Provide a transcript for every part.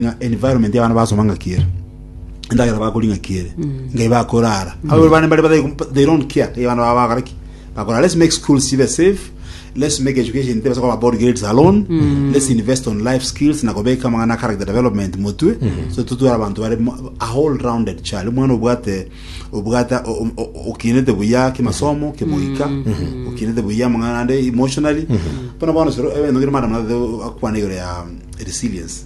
ng'a environment y'abana basoma ng'aki ere endagera bakori ng'aki ere ngai bakorara abo bana bari batari kumpa- they don't care ngai bana baba bakora ki bakora let's make schools sibe safe let's make education tebasa koba about grades alone let's invest on life skills na kobeka amang'ana character development motwe so tutwara abantu bari mo- a whole rounded child omwana obwate obwate o- o- o- okinete buya kimasomo kimoika okinete buya amang'ana ande emotionally bono bono soro ebintu bire madam akwana igoro ya resilience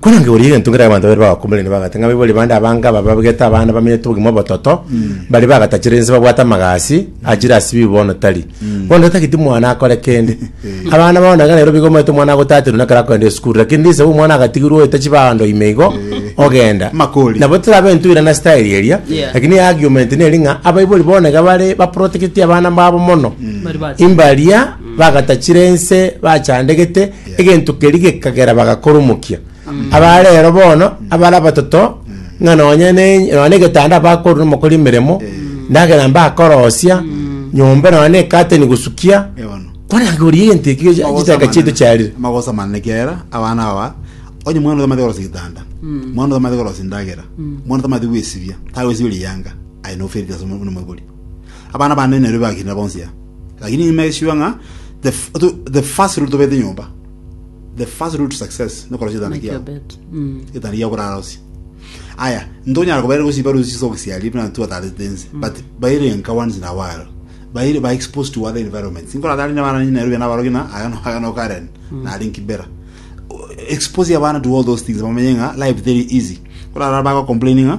Kwere nkegoria egento nkere abanto babere bagakumberania bagate ng'a baibori bande abange aba babegete abana bamenyete obogima obototo, baria bagatachire ense babwate amagasi achire ase ebibe bono tari. Bono totageti mwana akore kende. Abana bao naende ekero nairobia igo omanyete omwana agotaterwa nekero akogenda esukuru lakini risabu omwana agatigirwa oeta chibando ime igo, ogenda. Makori. Nabo terabe intwirana ase style eria, Yeah. lakini argument neri ng'a abaibori bono iga bare baproteketie abana babo mono. Bari bati. Imbaria bagatachire ense bachandegete egento keria gekagera bagakoromokia. Abare ero bono, abare abatoto, ng'a nonye ne nonye na egetanda bakoro nomokori emeremo, endagera mbakorosia, nyomba nonye na ekateni gosukia, Eh, bono. kore anga oria egento eki gechi- chitaka chiaito chiarire. magosamanana ekiagera abana aba onye mwana otamate korosia gitanda mwana otamate korosia endagera mwana otamate gwesibia tagwesibia riyanga aye noferire ase omobori Abana bane nerio bagakina bonsi aa. Lakini nyuma egesio ng'a the, f- to- the first rule tobete nyomba. The first rule to success nokora chetana Make your kiao. bed. Mm. Chetana kiao korara osi. Aya, ntonyara kobaira gosiba rusi so gosiari buna tu atarete ense. But baire enka once in a while. Baire ba exposed to other environments. Inkora atari na bana nyina rubia na barogi na aya no aya no Karen na ari nkibera. Expose abana to all those things bamenye ng'a life very easy. Korara bago complaining ng'a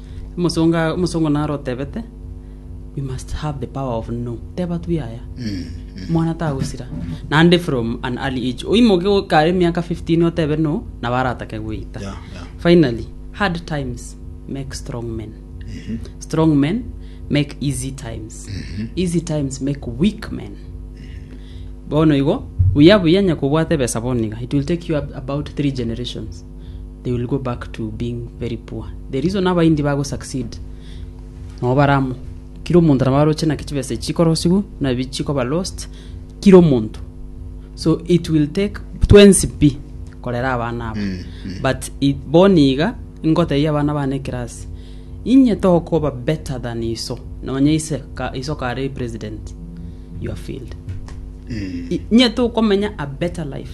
Omosongo a- omosongo naro otebete we must have the power of no teba tu yaya mwana tagosira naende from an early age oimoke o- kare emiaka 15 otebe no nabo aratake goita Yeah, yeah. finally hard times make strong men strong men make easy times easy times make weak men bono igo buya buya nyakobwate ebesa bono iga it will take you ab- about three generations they will go back to being very poor the reason abaindi bago succeed nabo baramo kira omonto nabo aroche naki chibesa echi chikorosigwa nabi chikoba lost kira omonto so it will take twensi pi korera abana abo Mm, mm. but it, boni iga ngotebia abana bane ekerasi inye tokoba better than iso nonye ise ka, iso kare president you are failed Mm. I- inye tokomenya a better life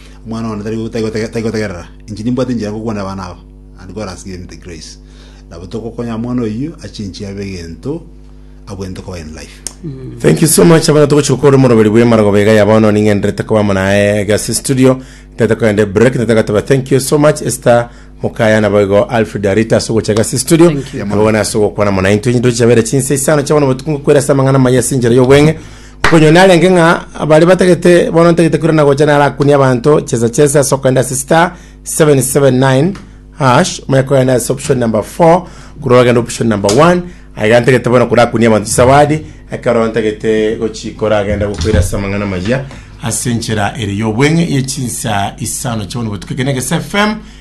Omwana one tari tari gotegerera. Inche nimbwate enchera ngokwanera abana aba, and God has given me the grace. Nabo togokonya omwana oyio achenchie abe egento abwenerete koba in life. Thank you so much abana togochika kore moroberi bwe marogoba iga ya bono ning'enderete koba amo naye gase studio tete kogende break tete gatoba thank you so much Esther mukaya nabo igo Alfred Arita ase ogocha gase studio Thank you. nabo bono ase ogokwana amo naye intwe ntochi chabere chinsa isano chabono botuko ngokwera ase amang'ana maya ase enchera y'obweng'e Okonywa narenge ng'a bare batagete bono ntagete koirana na gocha narakunie abanto chesa chesa ase okogenda ase star 779 hash manye kogenda ase option number 4 korwa ogende option number 1 aiga ntagete bono korakunie abanto chisawadi ekero ntagete gochikora agenda gokoira ase amang'ana amaya ase enchera ere y'obweng'e ye chinsa isano chio bono botuko ekeene egese fm